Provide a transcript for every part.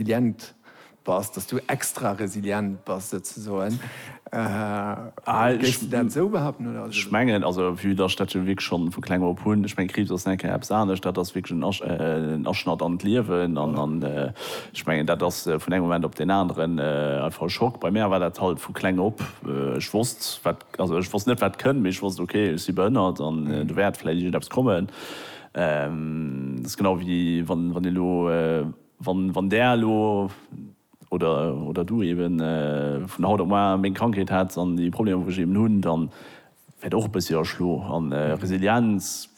Resilient bass, dass du extra resilient bass souzesoen. Géifs de dat esou behaupten oder ass et elo? Mengen also vue dass ech dat jo wierklech schonn vu kleng op hunn, ech mengen Kriibs ass nengkéier eppes anescht, dat ass wierklech en Aschnatt an d'Liewen an ech mengen dat ass vun engem Moment op deen aneren einfach e Schock. Bei mär war dat halt vu kleng op, ech wosst wat, also ech wosst net wat kënnt, mee ech wosst ok ech si behënnert an do wäert vläit iergendeppes kommen. Dat ass genau wéi wann een elo. Wann Där elo, oder Du eben, vun haut op muar meng Krankheet hätts an déi Problemer wou ech eben hunn, da wäert Der och e bëssi erschlo. A Resilienz,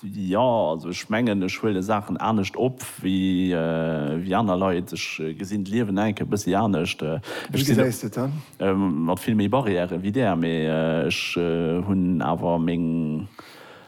jo, also ech mengen ech huele Saachen anescht op wéi aner Leit. Ech gesinn d'Liewen eng Kéier e bëssi anescht. Ech sinn mat vill méi Barrièren wéi Där, mee ech hunn awer meng.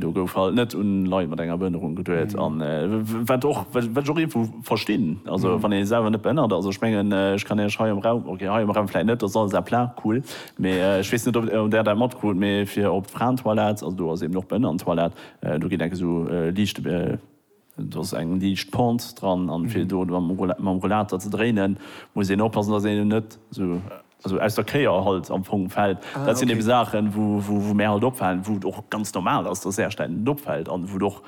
Do gouf halt net un Leit mat enger Behënnerung geduet an wat och wat ech och iergendwou verstinn, also wann ee selwer net behënnert ass, ech mengen ech kann Iech hei am Raum, ok hei am Raum vläit net, dat ass alles à plat, cool, mee ech weess net ob Där dat matkrut, mee fir op d'Fraentoilette, also do ass eben och Behënnerentoilette, do geet enk esou liicht. Do ass eng liicht Pente dran an fir do mam Rollator ze dréinen muss een oppassen dass een net esou aus der Kéier halt am Fong fällt. Dat sinn eben Saachen wou mär halt opfalen, wou et och ganz normal ass dass Äercht ännen opfällt an wou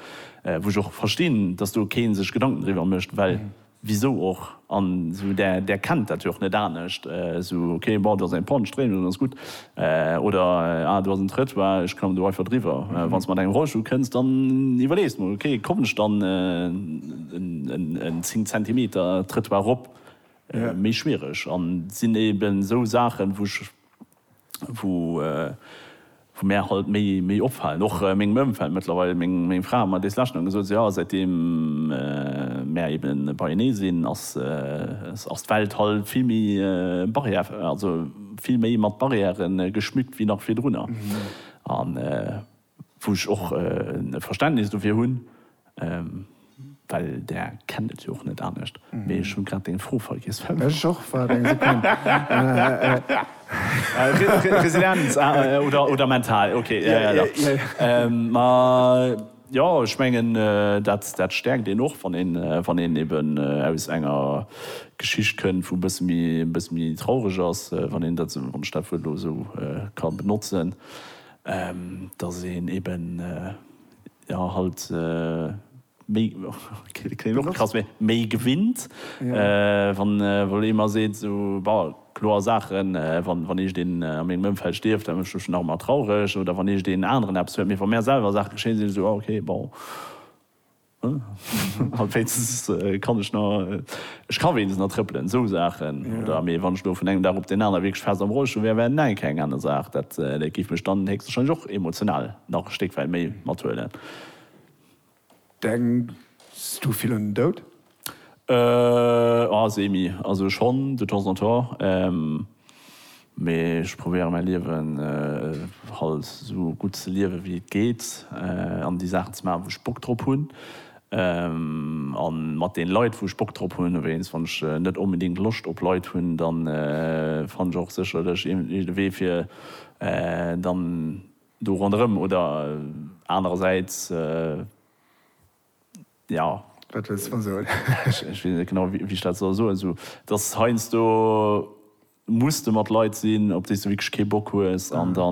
ech och verstinn dass do keen sech Gedanken driwwer mécht well Wisou och? An esou där, där kennt dat jo och net anescht. Esou, ok, bon, do ass eng Panne, Stréimung, dann ass gutt. Oder, ah, do ass en Trëttoir, ech kommen do einfach driwwer. Wann s de mat engem Rollstull kënns, dann iwwerlees de mol, ok, kommen ech dann en 10 Zentimeter Trëttoir erop? Méi schwiereg. An et sinn eben esou Saachen, wou ech. wou mär halt méi opfalen, och mengem Ëmfeld mëttlerweil, meng Fra huet mer dees lescht nach gesot, sou jo, säitdeem mär ebe beienee sinn, ass d'Welt halt vill méi barrière, also vill méi mat Barrièren geschmückt wéi nach virdrunner. Wou ech och e Verständnis dofir hunn, well Der kennt et jo och net anescht. Mee ech hu grad deng Fro vergiess. Ech och. Waart eng Sekonn. Residenz, ah, oder mental, okay. Jo, jo, jo. Ma jo, ech mengen, dat stäerkt een och, wann een eben aus enger Geschicht kënnt, wou e bësse méi, e bësse méi traureg ass, wann een dat, wann ech dat Wuert elo esou ka benotzen. dass een eben jo halt méi, kléngt och krass, mee méi gewinnt, wann wou ee mer seet sou, bon, kloer Saachen, wann wann eescht een a mengem Ëmfeld stierft, dann ech nach emmer traureg oder wann eescht een aneren eppes huet, mee wa mär selwer Saache geschéien, si ech sou, ah ok, bon. An wéinstens kann ech nach, ech ka wéinstens nach trëppelen, esou Saachen. Oder, mee wann ech elo vun engem Dag op deen aner wierklech fest am Rollstull wär, wär Neiken eng aner Saach. Dat géif mech dann héchstwahrscheinlech och emotional nach e Stéck wäit méi mathuelen. Denks du vill un den Doud? Semi. Also schonn, de temps en temps. Mee ech probéiere mäi Liewen halt esou gutt ze liewe wéi et geet an déi Saachen ze maachen, wou ech Bock drop hunn a mat deene Leit, wou ech Bock drop hunn. Wéinst wann ech net onbedéngt Loscht op Leit hunn, da fanne ech och sécherlech iergendee Wee fir dann do ronderëm oder anerersäits, jo. Wat wëlls de mer soen? Ech weess net genau, wéi ech dat soll soen. Esou, dass heiansdo muss de mat Leit sinn, op déi s de wierklech kee Bock hues. An da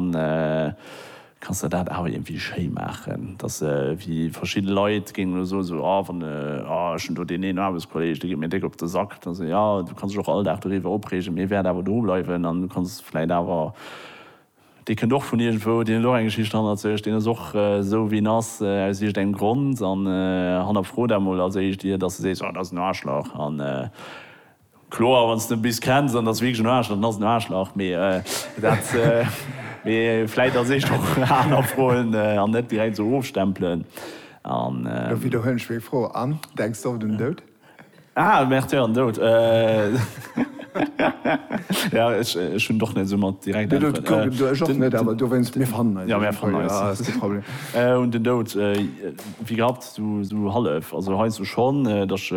kanns de dat awer iergendwéi schéi maachen. Dass wéi verschidde Leit géingen elo soen, esou, ah, wann, ah, ech hunn do deen een Aarbechtskolleeg, dee geet mir déck op de Sack. Da sot, jo, du kanns dech och all Dag doriwwer opreegen, mee e wäert awer do bleiwen an du kanns vläicht awer Dee kënnt och vun iergendwou, deen huet och eng Geschicht hannert sech, deen ass och esou wéi en ass aus iergendengem Grond. An hannerfro dat mol als éischt ier dass de sees, oh dat ass en Aarschlach. A kloer, wann s de en bis kenns an en ass wierklech en Aarschlach, dann ass en en Aarschlach. Mee dat, mee vläit als éischt och hannerfroen an net direkt esou ofstempelen. An. Lo widderhuelen ech meng Fro. An, denks de och un den Doud? Ah, Märtyr an Doud. Ja, ech hunn och net esou mat direkt Äntweren. Du, ech och net, awer dowéinst, mir fannen eis. Ja, mir fannen eis. Ja, ass kee Problem. Un den Doud, wéi gehabt, esou hallef. Also heiansdo schonn, datt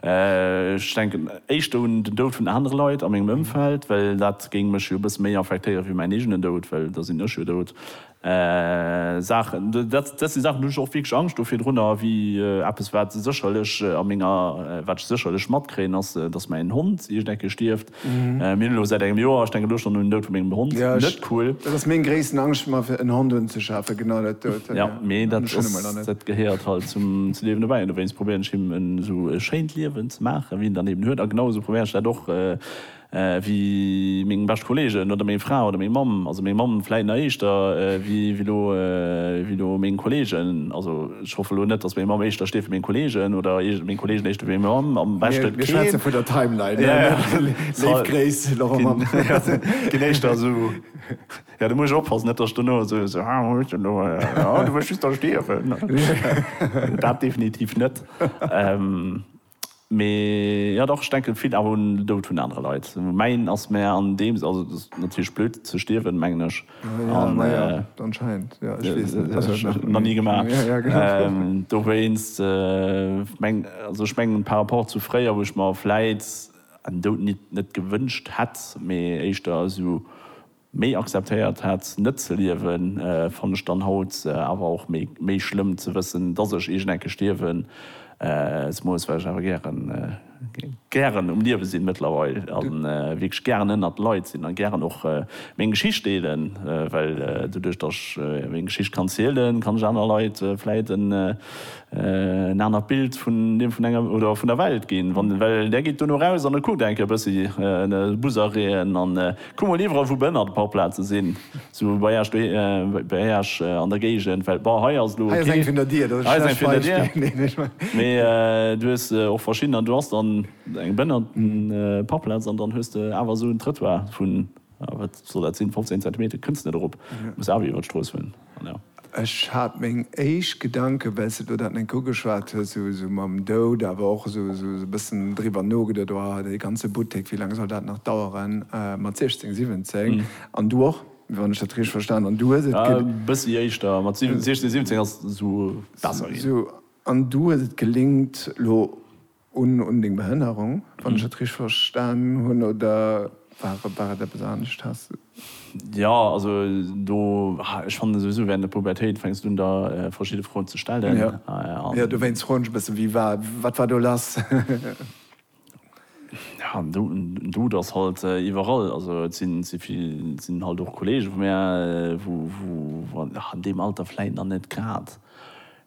ech denken éischter un den Doud vun anere Leit a mengem Ëmfeld, well dat géing mech jo e bësse méi affektéieren, wéi mäin eegenen Doud, well da sinn ech jo dout. Saachen, dat si Saachen, do hunn ech och wierklech Angscht do virdrunner, wéi eppes, wat sécherlech a menger, wat ech sécherlech matkréien, ass, dass mäin Hond iergend eng Kéier stierft. Mir hunn elo säit engem Joer, ech denken elo schonn un den Doud vu mengem Hond, net cool. Dat ass meng gréissten Angscht, mer fir en Hond unzeschafen, genau dat dout. Jo, mee dat ass, dat gehéiert halt zum Liewen dobäi an dowéinst probéieren ech him en esou schéint Liewen ze maachen, wéi en dann eben huet a genau esou probéieren ech dat och, ewéi meng bescht Kollegen oder meng Fra oder meng Mamm, also meng Mamm vläit nach éischter ewéi elo, ewéi elo meng Kollegen, also ech hoffe elo net, datt meng Mamm éischter steet ewéi meng Kollegen oder meng Kollegen éischter ewéi meng Mamm, am beschte keen. Mir schwätze vun der Timeline, jo jo, léif Gréiss Laurent Mamm. Keen éischter esou, jo do muss ech oppassen, net datt ech dono esou so, ah hues de elo, ah du wëlls just da stierwen, dat definitiv net. Mee jo dach, ech denken vill awer un den Doud vun anere Leit. Mäin ass mär an deem Sënn, also et ass natierlech blöd ze stierwen mengen ech, nach ni gemaach, dowéinst mengen also ech mengen par rapport zu fréier wou ech mer vläit en Doud nit net gewënscht hätt, mee éischter esou. Méi akzeptéiert hat net ze liewen fann ech dann haut awer och méi schlëmm ze wëssen dass ech iergend eng Kéier stierwen ze moes, well ech awer gären gären um Liewe sinn mëttlerweil a wierklech gären ënnert Leit sinn a gären och meng Geschicht deelen, well doduerch dass ech meng Geschicht kann zielen kann ech aner Leit vläit en anert Bild vun deem vun enger oder vun der Welt ginn, well där geet duerno raus an e kuckt eng Kéier e bëssi Busereen an. Kuck mol iwwerall wou Bënn an de Parkplaze sinn, sou bei Äech bei Äech an der Géigend, well bon hei ass elo, hei ass eng vun der Dier, dat ass e schlecht Beispill, mee du hues och verschidden an du has dann eng Bënn an Parkplaz an dann hues de awer esou en Trëttoir vun, wat soll dat sinn, 15 Zentimeter kënns net erop, muss awer iwwer d'Strooss hunn. Ech hat meng éischt Gedanken, well s de do dat net ugeschwat hues, esou mam Doud, awer och esou e bëssen driwwer nogeduet, oh, dee ganze Buttek, wéi laang soll dat nach daueren mat 16, 17? An du och, wann ech dat richteg verstan hunn, du hues et. E bëssi éischter, mat 16, 17 ass esou besser ginn. Esou, an du hues et gelingt, lo. Un deng Behënnerung, wann ech et richteg verstan hunn, oder war et eppes anescht? Has de. Jo, also do, ech fannen souwisou während der Pubertéit fänks du un der verschidde Froen ze stellen. Jo, dowéinst froen ech e bëssen, wie war, wat war do lass? Jo, en Dout ass halt iwwerall. Also et sinn halt och Kollege vu mär, wou an deem Alter vläit nach net grad.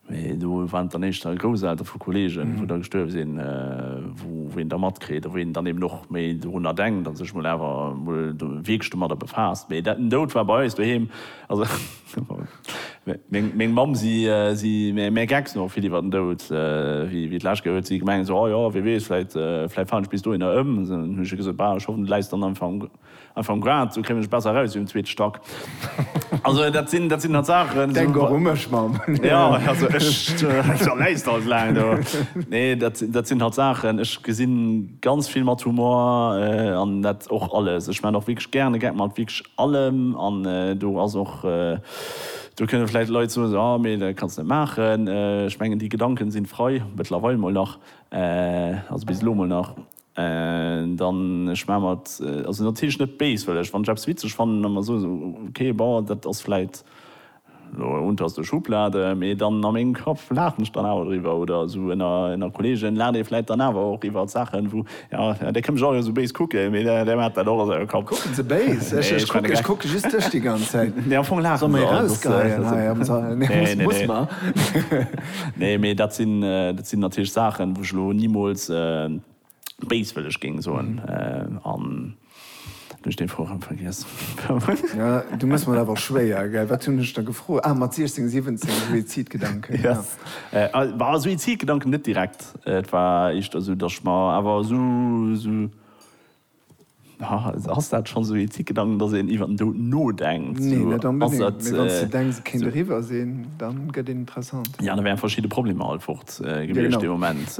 Mee do waren et dann éischter d'Grousseltere vu Kolleegen, wou da gestuerwe sinn, wou een da matkritt a wou een dann eben och méi dorunner denkt a sech mol awer mol wierklech domadder befaasst. Mee dat, den Doud war bei eis doheem, also meng Mamm, si mäer gecks no vill iwwer den Doud, wéi et lech geet, huet si gemengt esou, oh jo, wee weess, vläit falen ech bis dohinner ëm. Hu ech hir gesot, bah, ech hoffen, du läis dann einfach am. Einfach um Grad, sou kréien ech besser eraus wéi um zweete Stack. Also dat sinn, dat sinn halt Saachen. Denk och u mech, Mamm. Jo, also ech, da läis de halt laang do. Nee, dat, dat sinn halt Saachen, ech gesinn ganz vill mat Humor an dat och alles. Ech maachen och wierklech gären e Gag mat wierklech allem an do ass och, do kënne vläicht Leit soen esou, ah mee dat kanns de net maachen. Ech mengen déi Gedanken sinn frei, mëttlerweil mol nach, also bis elo mol nach. Dann, ech maache mer et also natierlech net béis, well ech, wann ech eppes witzeg fannen, da mer soen, okay, bon, dat ass vläit elo unter der Schublade, mee dann a mengem Kapp laachen ech dann awer driwwer. Oder esou ënner Kolleegen laacht ee vläit dann awer och iwwert Saachen, wou, jo, dee kënnt mech och esou béis kucken, mee dee maacht dat och a sengem Kapp. Kucken se béis? Ech kucke just dech déi ganz Zäit. Nee, am Fong laache se. Soe mer erausgeheien hei am Sall? Nee, muss mer. Nee, mee dat sinn, dat sinn natierlech Saachen, wou ech elo nimools béiswëlleg géing soen. An elo hunn ech dee Vorgang vergiess. Ja, du méchs mer et awer schwéier, gell? Wat hunn ech der gefrot? Ah, mat 16, 17, Suizidgedanken, ja. Bah, Suizidgedanken net direkt. Et war éischter esou, datt ech mer awer esou, esou. Ass dat schonn esou ee Ticketang, datt een iwwer den Doud nodenkt? Nee, net onbedéngt. Mee wann s de denks, et kéint eriwwer sinn, da gëtt een interessant. Jo, da wären verschidde Problemer alt fort gewiescht dee Moment.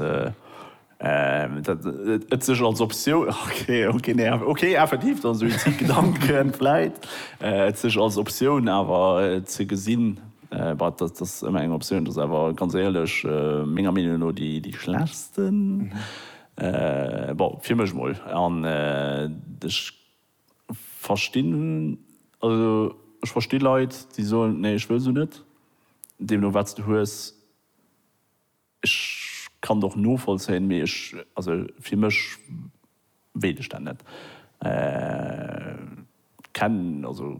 Et sech als Optioun, ok, effektiv, datt esou ee Ticketang kënnt vläit, et sech als Optioun awer ze gesinn, bah, datt ass ëmmer eng Optioun, datt ass awer ganz éierlech menger Meenung no déi schlechtsten. Bon, fir mech mol. An ech verstinn, also ech versti Leit, déi soen, nee, ech wëll se net. Deemno wat s de hues, ech kann et och novollzéien, mee ech, also fir mech wéilt ech dat net. Kenn, also.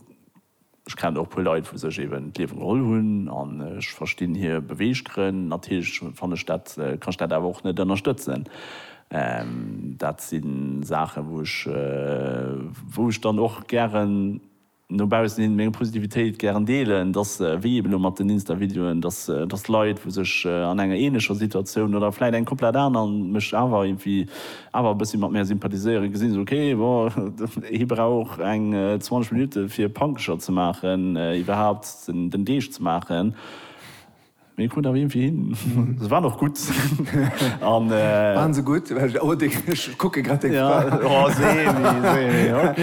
Ech kennen och e puer Leit wou sech eben d'Liewe geholl hunn an ech verstinn hir Beweeggrënn. Natierlech fanne ech dat, kann ech dat awer och net ënnerstëtzen. Dat si Saachen wou ech, wou ech dann och gären no baussen hin meng Positivitéit gären deelen, dass wéi eben elo mat den Insta-Videoen, dass, dass Leit wou sech an enger ähnlecher Situatioun oder vläit eng komplett aner mech awer irgendwie awer e bëssi mat mär sympathiséieren, gesinn se, ok, bon, hie brauch eng 20 Minutte fir Pankecher ze maachen, iwwerhaapt den Deeg ze maachen, mee hie krut awer iergendwéi hin. Se waren och gutt. Waren se gutt? Oh, ech kucke grad deng Fra. Jo, Semi, Semi, ok.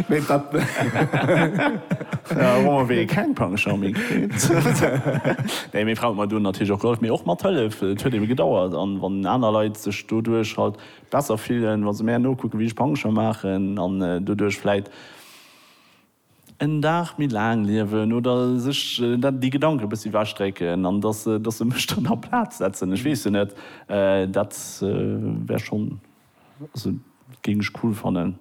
Mee wat? Hu mer wéi keng Pankecher méi kritt. Nee, meng Fra huet mer do natierlech och gehollef, mee och mat Hëllef, et huet ebe gedauert, an wann aner Leit sech. doduerch halt besser fillen wa se mär nokucken wéi ech Pancher maachen an doduerch vläit en Dag méi laang liewen oder sech déi Gedanken e bëssi ewech drécken an dass se dass se mech dann a Plaz setzen. Ech weess jo net, dat wär schonn, also géing ech cool fannen.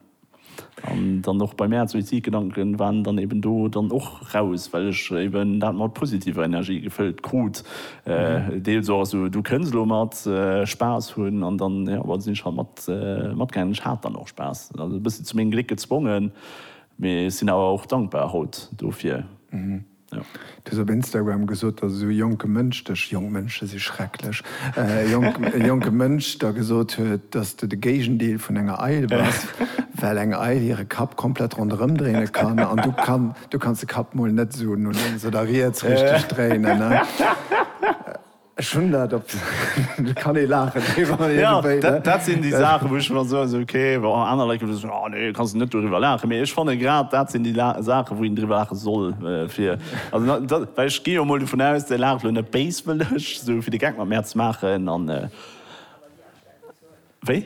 An dann och bei mär Suizidgedanken waren dann eben do dann och raus, well ech eben dat mat positiver Energie gefëllt krut. Deels och esou, du kënns elo mat Spaass hunn an dann, jo, da sinn ech halt mat matgaangen. Ech hat dann och Spaass, also e bëssi zu mengem Gléck gezwongen, mee sinn awer och dankbar haut dofir. Du hues op Instagram gesot, datt esou e jonke Mënsch dech, jonk Mënsche si schrecklech, e jonke Mënsch der gesot huet, datt s du de Géigendeel vun enger Eil bass, well eng Eil hire Kapp komplett ronderëm dréine kann an du kanns de Kapp mol net esou no lénks oder riets richteg dréinen. Ech hunn dat op de. Kann ee laachen driwwer iergendwéi, ne? Dat sinn déi Saachen, wou ech mer soen, esou ok, bon, aner Leit gëtt soen, oh nee, kanns de net doriwwer laachen. Mee ech fanne grad dat sinn déi Saachen, wou een driwwer laache soll. Fir, also dat, well ech gi jo emol dovun aus, Dir laacht elo net béiswëlleg, esou fir de Geck mat mär ze maachen. An wéi?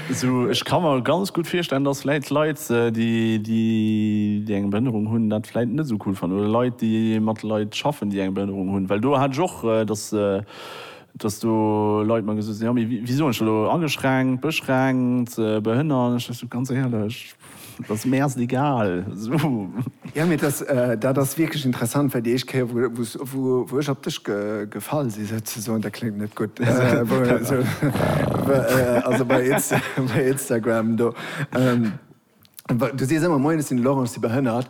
Sou, ech ka mer ganz gutt virstellen, dass vläit Leit, déi eng Behënnerung hunn, dat vläit net esou cool fannen, oder Leit, déi mat Leit schaffen, déi eng Behënnerung hunn, well do hat ech och, dass do Leit mer gesot hunn, jo, mee wéi soen ech dat elo, ageschränkt, beschränkt, behënnert, an ech dächt esou, ganz éierlech, Et ass mir erst egal. Jo, mee dat ass wierklech interessant, well déi éischt Kéier, wou ech op dech gefall sinn, souzesoen, dat kléngt net gutt, also bei Instagram do, du sees ëmmer, Moien, ech sinn de Laurent, ech si behënnert.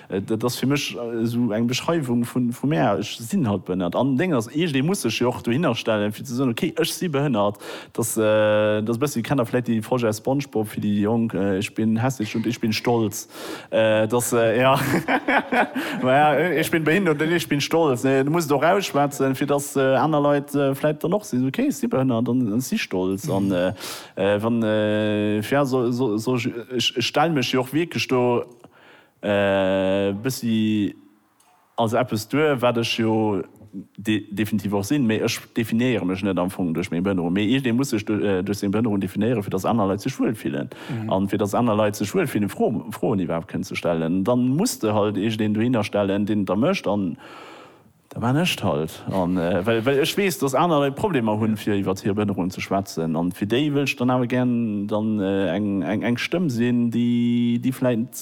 Dat ass fir mech esou eng Beschreiwung vu mär, ech sinn halt behënnert. An Déng ass, iergendee muss sech jo och dohinner stellen, fir ze soen, ok, ech si behënnert. Dass, dass e bëssi, kennt Der vläicht dee Projet Spongebob, fir déi Jonk, Ich bin hässlich und ich bin stolz. Dass, jo, ma ja, Ich bin behindert und ich bin stolz. Nee, du muss et och rausschwätzen, fir dass aner Leit vläicht dann och si, ok, ech si behënnert an ech si stolz. An wann, fir, ja, soll ech, ech stell mech jo och wierklech do, E bëssi als eppes duer, wat ech jo definitiv och sinn, mee ech definéiere mech net am Fong duerch meng Behënnerung, mee iergendee muss sech duerch seng Behënnerung definéieren, fir datt aner Leit sech wuel fillen. An fir datt aner Leit sech wuel fillen, Froen iwwerhaapt kënnen ze stellen, da muss de halt iergendeen dohinner stellen, deen et da mécht. Da maan ech 't halt. An well well ech wees dass aner Leit Problemer hun fir iwwert hier Behënnerung ze schwätzen, an fir déi wëll ech dann awer gären dann eng eng eng Stëmm sin déi déi vläit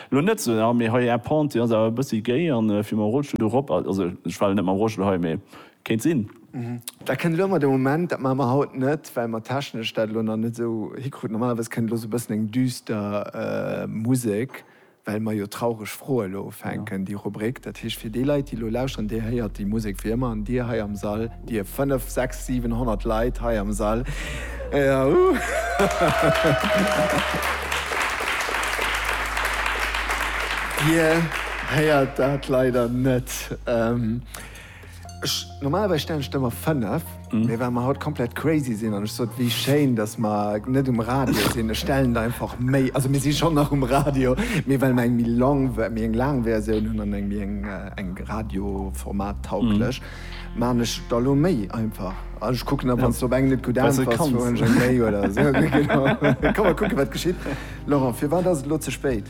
lo net sou ah mee hei är Pente déi ass awer e bëssi géi an fir mam Rollstuhl do rop, also ech war lo net mam Rollstuhl hei mee kéint sin. Dat kënnt elo emmer de Moment, dat maache mer haut net well mer technesch dat elo nach net esou hikruten. Normalerweis kënnt elo sou e bëssen eng düster Musek. well mer jo traureg Froe lo ufänken, déi Rubrik. Dat heescht, fir déi Leit, déi elo lauschteren, Dir héiert déi Musek wéi ëmmer. An Dir hei am Sall, Dir fënnef, sechs, siwen, honnert Leit hei am Sall, Dir héiert dat leider net. Ech, normalerweis stellen ech der emmer 5, mee well mer haut komplett crazy sinn an ech sot, wéi schéin, datt mer net um Radio sinn, ech stellen der einfach méi, also mir si schonn nach um Radio, mee well mer eng méi long, méi eng laang Versioun hunn an eng méi eng, eng radioformattauglech, maachen ech der elo méi einfach. An ech kucken da, wann s de op eng net gutt äntwers, soen ech eng méi oder esou. Kann mer kucken, wat geschitt. Laurent, firwat ass et elo ze spéit?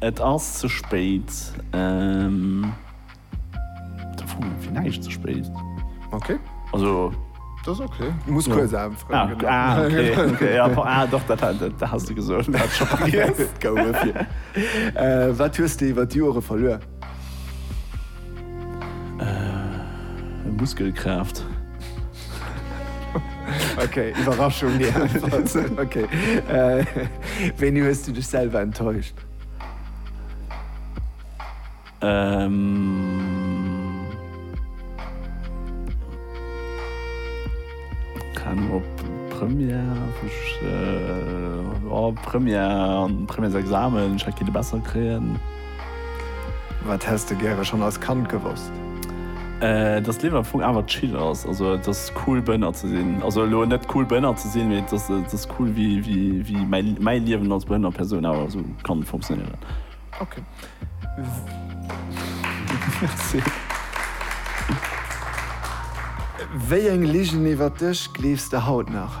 Et ass ze spéit. Fir näischt ze spéit. Ok. Also. Dat ass ok. Du muss kuerz Aen froen ginn. Ah, okay. Ah, ok. Ah, doch, dat hat de gesot. Gouf et fir. Wat hues de iwwer d'Joere verluer? Muskelkraaft. Ok, Iwwerraschung déi einfach sinn. Ok, wéini hues du dech selwer enttäuscht? Keng Ahnung, op Première, Première, Premièresexamen, ech hätt kinte besser kréien. Wat häss de gäre schonn als Kand gewosst? Dass d'Liewen am Fong awer chill ass, also et ass cool Bënner ze sinn, also elo net cool Bënner ze sinn, mee et ass et ass cool wéi wéi wéi mäi mäi Liewen als behënnert Persoun awer esou kann funktionéieren. Ok Merci. Wéi eng Ligen iwwert dech gleefs de haut nach?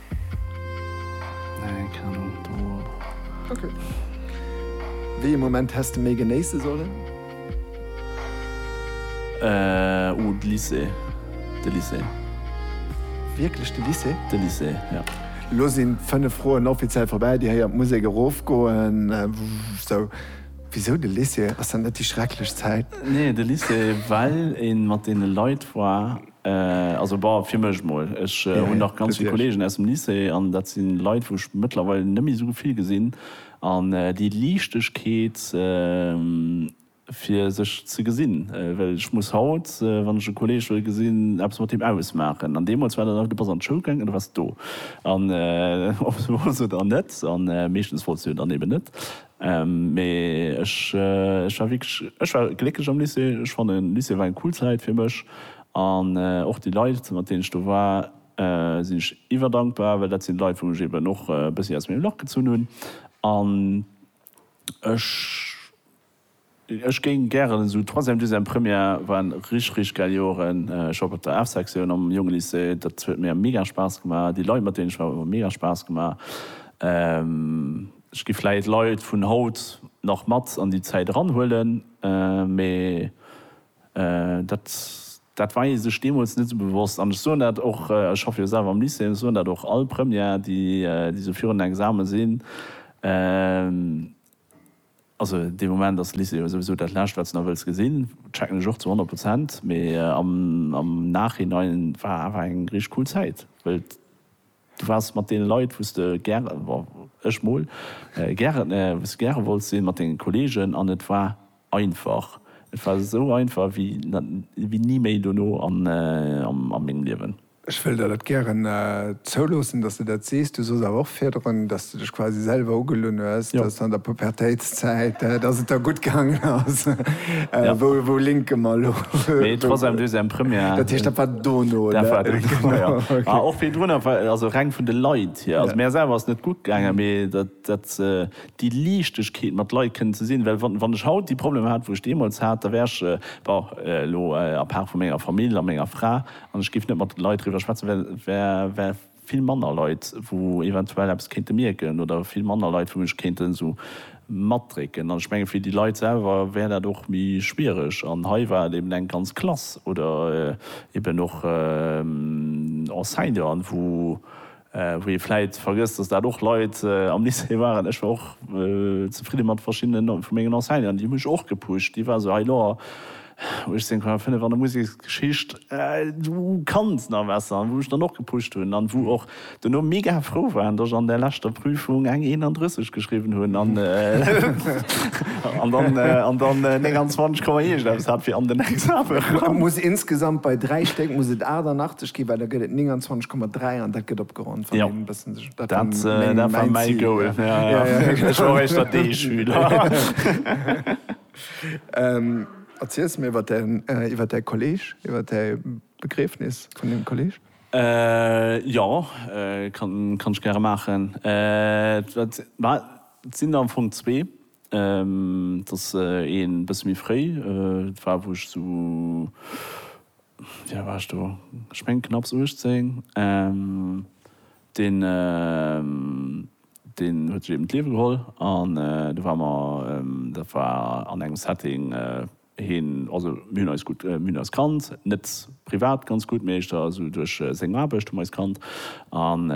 Wéi ee Moment häss de méi genéisse sollen? Oh, de Lycée. De Lycée. Wierklech de Lycée? De Lycée, jo. Elo sinn d'fënnef Froen offiziell vorbäi. Dir héiert d'Musek erofgoen. Sou, wisou de Lycée? Ass dat net déi schrecklech Zäit? Nee, de Lycée, well ee mat deene Leit war. Also bah, fir mech mol. Ech hunn nach ganz vill Kollegen aus dem Lycée an dat si Leit, wou ech mëttlerweil net méi esou vill gesinn. An déi Liichtegkeet, fir sech ze gesinn, well ech muss haut, wann ech e Kolleeg wëll gesinn, eppes mat deem ausmaachen. An deemools war dat einfach, du bass an d'Schoul gaangen an du waars do. An ob se wooss oder net, an meeschtens wolls du jo dann eben net, Mee ech war wierklech, ech war glécklech am Lycée. Ech fannen, Lycée war eng cool Zäit fir mech. An och déi Leit, mat deenen ech do war, sinn ech iwwerdankbar, well dat sinn Leit, wou ech eben och e bëssi aus mengem Lach gezunn hunn. An ech. Ech géing gären esou Troisième, Deuxième, Première waren rich rich gäil Joeren. Ech op op der F Sektioun am jonge Lycée, dat huet mir mega Spaass gemaach. Déi Leit mat deenen ech war hu mer mega Spaass gemaach. Ech gi vläit Leit vun haut nach mat an déi Zäit eran huelen, mee dat dat war ee sech deemools net esou bewosst. An ech soen dat och, ech schaffe jo selwer am Lycée, ech soen dat och all Première déi déi esou virun den Examen sinn, Also dee Moment ass Lycée jo souwisou dat Lescht, wat s de nach wëlls gesinn. Checken ech och zu honnert Prozent. Mee am Nachhinein war awer eng richteg cool Zäit, well du waars mat deene Leit, wou s de gäre, ech mol, gäre wolls sinn, mat denge Kolleegen. An et war einfach, et war esou einfach wéi ni méi dono a mengem Liewen. Ech wëll der dat gären zouloossen, dass de dat sees. Du sooss awer och virdrun, dass de dech quasi selwer ugelunn hues, dass an der Pubertéitszäit, dass et der gutt gaangen ass. Wou linke mer elo? Mee trotzdeem, du hues eng Première. Dat heescht, dat war dono, oder? Dat war dono, jo. A och virdrun, also reng vun de Leit hier. Also mär selwer ass net gutt gaangen, mee dat, déi Liichtegkeet mat Leit kënnen ze sinn. Well wann ech haut déi Problemer hat, wou ech deemools hat, da wär ech, bon, elo à part vu menger Famill a menger Fra, An ech géif net mat de Leit driwwer schwätzen, well et wäre vill manner Leit, wou eventuell eppes kéinte mierken oder vill manner Leit, wou mech kéinten esou matdrécken. An ech menge fir déi Leit selwer wär dat och méi schwiereg. An hei war et eben eng ganz Klass oder eben och Enseignanten, wou Wou ee vläit vergësst, dass dat och Leit am Lycée waren, ech war och zefridde mat verschiddene vu mengen Enseignanten, déi hu mech och gepusht, déi ware sou, hei lo, 18,5 an der Museksgeschicht, du kanns nach besser, an wou mech dann och gepusht hunn an wou och duerno mega frou waren, dass ech an där leschter Prüfung eng 31 geschriwwen hunn an dann 29 Komma iergendeppes hat fir an den Exame eran. Muss insgesamt bei dräi Stéck muss et 88. Okay, well da gëtt et 29,3 an dat gëtt opgeronnt, wann een e bëssen sech. Dat war mäi Goal, ja, ja. Ech war och éischter D-Schüler. Erziels mir iwwer däi, iwwer däi Kolleg, iwwer däi Begriefnis vun deem Kolleg. Jo, kann ech gäre maachen. Et sinn der am Fong zwee. Et ass ee bësse méi fréi. Et war, wou ech esou, wéi al war ech do, ech mengen knapps 18. Deen, deen huet sech eben d'Liewe geholl. An do ware mer, dat war an engem Setting, hien, also mir hunn eis gutt, mir hunn eis kannt, net privat ganz gutt, mee éischter esou duerch seng Aarbecht hu mer eis kannt. An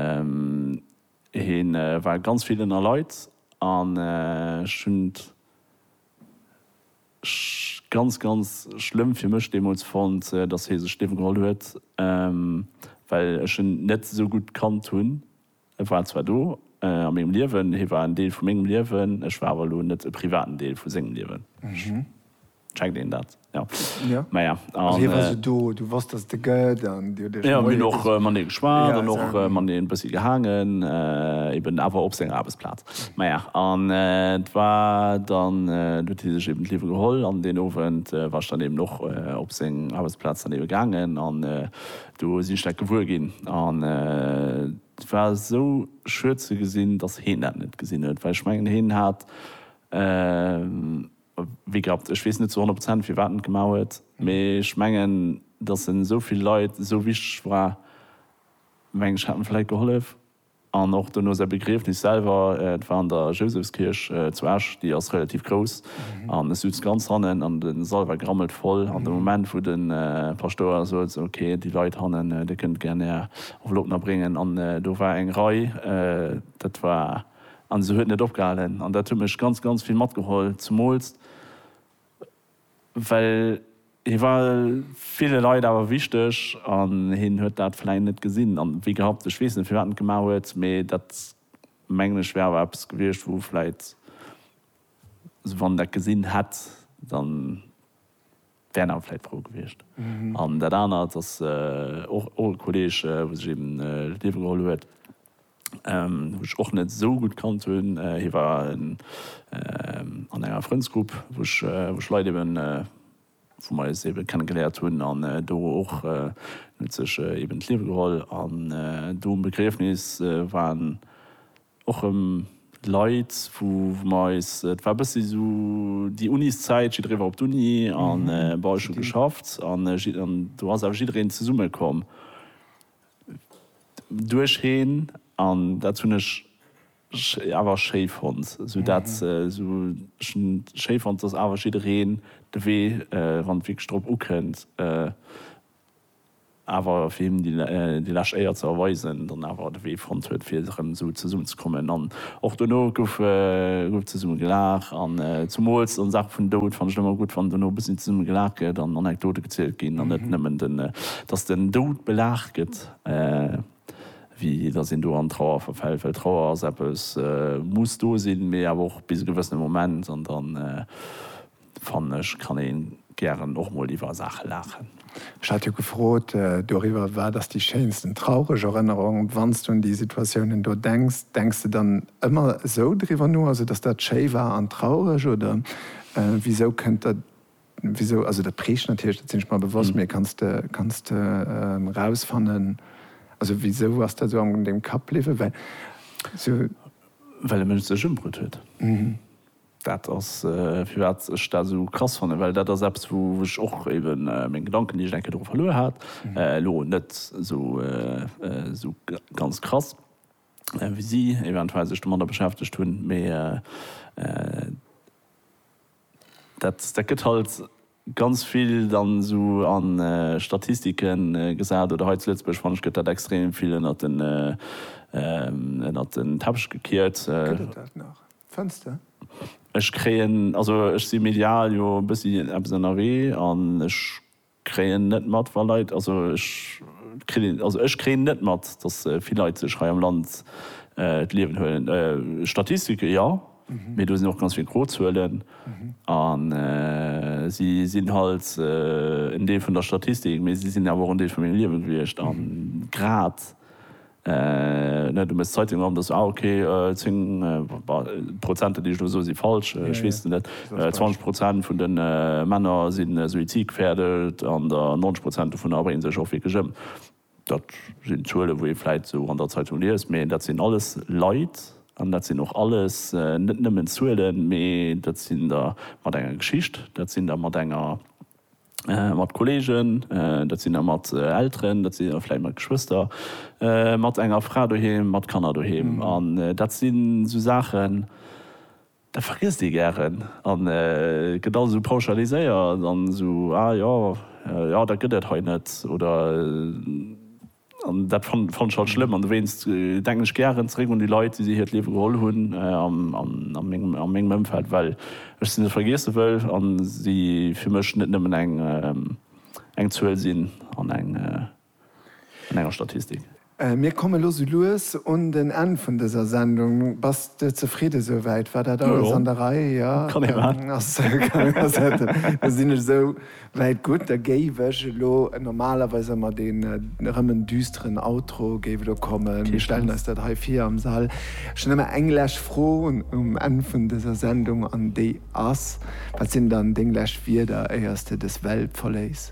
Hien war ganz vill ënner Leit an ech hunn et ganz, ganz schlëmm fir mech deemools fonnt, dass hie sech d'Liewe geholl huet, well ech en net esou gutt gekannt hunn. E war zwar do a mengem Liewen, hie war en Deel vu mengem Liewen, ech war awer elo net e privaten Deel vu sengem Liewen. Checkt een dat? Jo. Jo. Maja, an. Hie war sou do, du wosst, dass et e gëtt, an Dir hutt Iech. Jo, mir hunn och mat him geschwat an och mat him e bëssi gehaangen, eben awer op senger Aarbechtsplaz. Maja, an et war dann, et huet hie sech eben d'Liewe geholl an deen Owend war ech dann eben och op seng Aarbechtsplaz dann ebe gaangen an do sinn ech dat gewuer ginn. An et war esou schued ze gesinn, dass heen dat net gesinn huet, well ech mengen, hien hat. Wéi gehabt, ech weess net zu 100 Prozent firwat en et gemaach huet, mee ech mengen, datt en esou vill Leit esou wichteg war, meng ech, hätt en vläit gehollef. An och dono säi Begriefnis selwer, et war an der Jousefskierch zu Esch, déi ass relativ grouss, an ech souz ganz hannen an de Sall war grammelt voll, an de Moment wou de Paschtouer sot, esou ok, déi Leit hannen, dir kënnt gär är Enveloppen erbréngen, an do war eng Rei, dat war. an se huet net opgehalen an dat huet mech ganz ganz vill matgeholl, zemools well hie war ville Leit awer wichteg an hien huet dat vläicht net gesinn an wéi gehapt, ech weess net firwat en et gemaach huet, mee dat mengen ech wär awer eppes gewiescht wou vläicht, also wann en dat gesinn hätt, dann. Wären awer vläit frou gewiescht. An dat anert ass och och e Kolleg, wou sech eben d'Liewe geholl huet, wou ech och net esou gutt kannt hunn. Hie war an enger Frëndsgrupp, wou ech wou ech Leit eben, wou mer eis ebe kenne geléiert hunn an do och. En huet sech eben d'Liewe geholl an do um Begriefnis war en och em Leit wou mer eis, et war e bëssi sou déi Uniszäit, jidderee war op d'Uni an bon ech hu geschafft an do ass awer jiddereen zesumme komm duercheen an dat hunn ech awer schéi fonnt, sou dat sou ech hunn schéi fonnt dass awer jiddereen de Wee wann et wierklech drop ukënnt. awer fir him déi lescht Éier ze erweisen, dann awer de Wee fonnt huet fir erëm esou zesummen ze kommen. An och dono gouf zesumme gelaach an zumools an Saache vun Doud fannt ech et ëmmer gutt wann dono e bëssi zesumme gelaach gëtt an Anekdote gezielt ginn an net nëmmen den dass den Doud belaach gëtt wéi dass een do an Trauer verfält, well Trauer ass eppes muss do sinn, mee awer och bis e gewëssene Moment an dann. Fannen ech kann een gären och mol iwwer Saachen laachen. Ech hat jo gefrot doriwwer, wat ass déi schéinsten traureg Erënnerung? Wanns du un déi Situatiounen do denks, denks de dann ëmmer esou driwwer no, also dass dat schéi war an traureg oder wisou kënnt der, wisou, also dat preegt natierlech, dat sinn ech mer bewosst, mee kanns de, kanns de rausfannen, also wisou ass dat esou an dengem Kapp bliwwen? Well esou. Well e Mënsch sech ëmbruet huet. Dat ass firwat ech dat esou krass fannen, well dat ass eppes wou ech och eben meng Gedanken déi ech enke dru verluer hat, elo net esou ganz krass wéi si eventuell sech domadder beschäftegt hunn, mee dat gëtt halt. ganz vill dann esou a Statistike gesat oder hei zu Lëtzebuerg fanne ech gëtt dat extrem vill ënnert den ënnert den Teppech gekiert. Gëtt et dat nach, fënns de? Ech kréien, also ech si medial jo e bëssi eppes ënnerwee an ech kréien net mat wa Leit, also ech kritt een, also ech kréien net mat, datt vill Leit sech hei am Land d'Liewen huelen. Statistike jo. Mee do sinn och ganz vill gro Zuelen a si sinn halt en Deel vun der Statistik, mee si sinn awer och en Deel vu mengem Liewe gewiescht. A grad, du méchs d'Zeitung op, da se, ah, okay, zéng, d'Prozenter, déi ech elo soe si falsch, ech weess et net, zwanzeg Prozent vun de Männer si suizidgefährdet an der 90 Prozent dovunner bréngen sech och wierklech ëm. Dat sinn Zuelen, wou ee vläit esou an der Zeitung liest, mee dat sinn alles Leit an dat sinn och alles net nëmmen Zuelen, mee dat sinn der mat enger Geschicht, dat sinn der mat enger, mat Kolleegen, dat sinn der mat Elteren, dat sinn der vläit mat Geschwëster, mat enger Fra doheem, mat Kanner doheem. An dat sinn esou Saachen, Dat vergiesst ee gären a gëtt alles esou pauschaliséiert an esou, ah jo, jo dat gëtt et hei net oder. An dat fannen ech halt schlëmm an dowéinst denken ech gären zeréck un déi Leit, déi si hiert Liewe geholl hunn a mengem Ëmfeld, well ech si net vergiesse wëll a si fir mech net nëmmen eng Zuel sinn an eng. an enger Statistik. Mir komme lo sou lues un den Enn vun dëser Sendung. Bass de zefridde sou wäit? War dat alles an der Rei? Jo, kann ee maachen. Da sinn ech sou wäit gutt. Da géif ech elo, normalerweis ëmmer deen erëm en düsteren Outro géif elo kommen. Mir stellen eis dat hei vir am Sall. Ech hunn ëmmer eng lescht Fro um Enn vun dëser Sendung an déi ass, Wat sinn dann deng lescht Wierder éiers de dës Welt verléiss?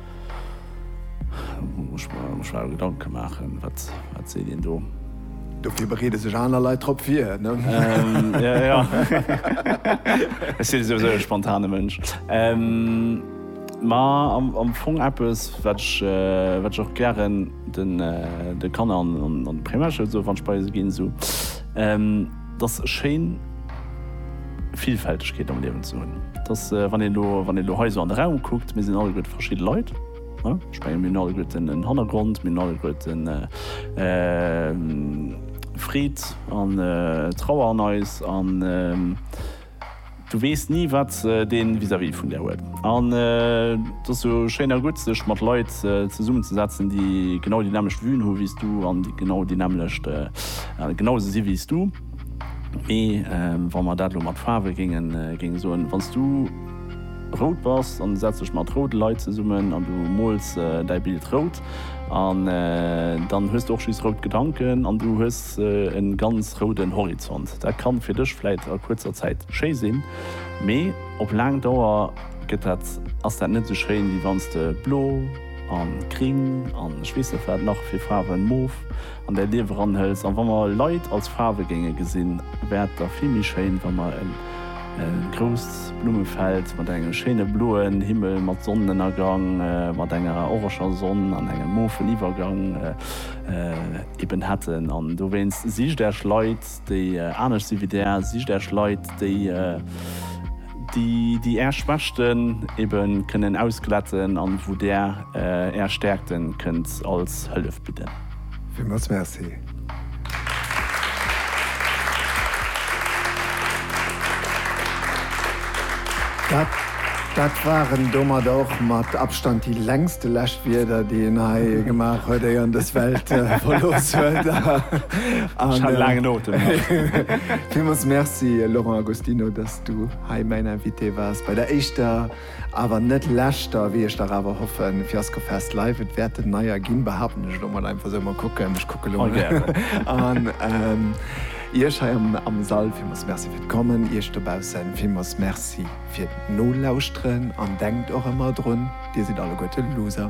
Muss mer mech awer Gedanke maachen, wat seet een do? Dofir bereede sech aner Leit drop vir, ne? Jo, jo. Ech sinn souwisou e spontane Mënsch. Ma am Fong eppes, wat ech och gären de Kanner an de Primärschoul soen, wann ech bei se ginn. 't ass schéin Villfältegkeet am Liewen ze hunn. 't ass, wann een elo, wann een elo hei esou an de Raum kuckt, mir sinn alleguerte verschidde Leit. Ech menge mir hunn alleguerten en Hannergrond, mir hunn alleguerten Freed an Trauer an eis an, Du weess ni wat dee vis-à-vis vun der huet. An et ass jo schéin a gutt sech mat Leit zesummen ze setzen déi genau déi nämlecht Vuen hu wéi s du an déi genau déi nämlecht genau esou si wéi s du. Mee wa mer dat elo mat Faarwe géingen géinge soen, wann s du rout bass an du setz dech mat roude Leit zesummen an du mools däi Bild rout, an dann hues de och just rout Gedanken an du hues e ganz rouden Horizont. Dat kann fir dech vläit a kuerzer Zäit schéi sinn, mee op laang Dauer gëtt dat, ass dat net esou schéin wéi wann s de blo an gring an ech weess net wat nach fir Faarwen, mof, an däi Liewe ranhëls. An wa mer Leit als Faarwe géinge gesinn, wär et da vill méi schéin, wa mer e grousst Blummefeld mat engem schéine bloen Himmel, mat Sonnenënnergang, mat enger oreger Sonn an engem mofen Iwwergang eben hätten. An dowéinst, sicht Äech Leit, déi anescht si wéi Där, sicht Äech Leit, déi, déi, déi Är Schwächten ebe kënnen ausglätten an wou Där Är Stäerkten kënnt als Hëllef bidden. Villmools Merci. Dat waren domat och mat Abstand déi längste Läschwierder, déi een hei gemaach huet, éier en dës Welt verlooss huet. Ech hat e laangen Otem. Villmools Merci, Laurent Agostino, dass du hei mäin Invité waars bei der éischter. Awer net leschter, wéi ech dach awer hoffen, Fiasco Fest Live, et wäert en neier ginn, behaapten ech elo mol einfach sou, mol kucken, ech kucke lo an Iech hei am Sall villmools Merci fir d'Kommen, Iech dobausse villmools Merci fir d'Nolauschteren an denkt och ëmmer drun, Dir sidd alleguerte Loser.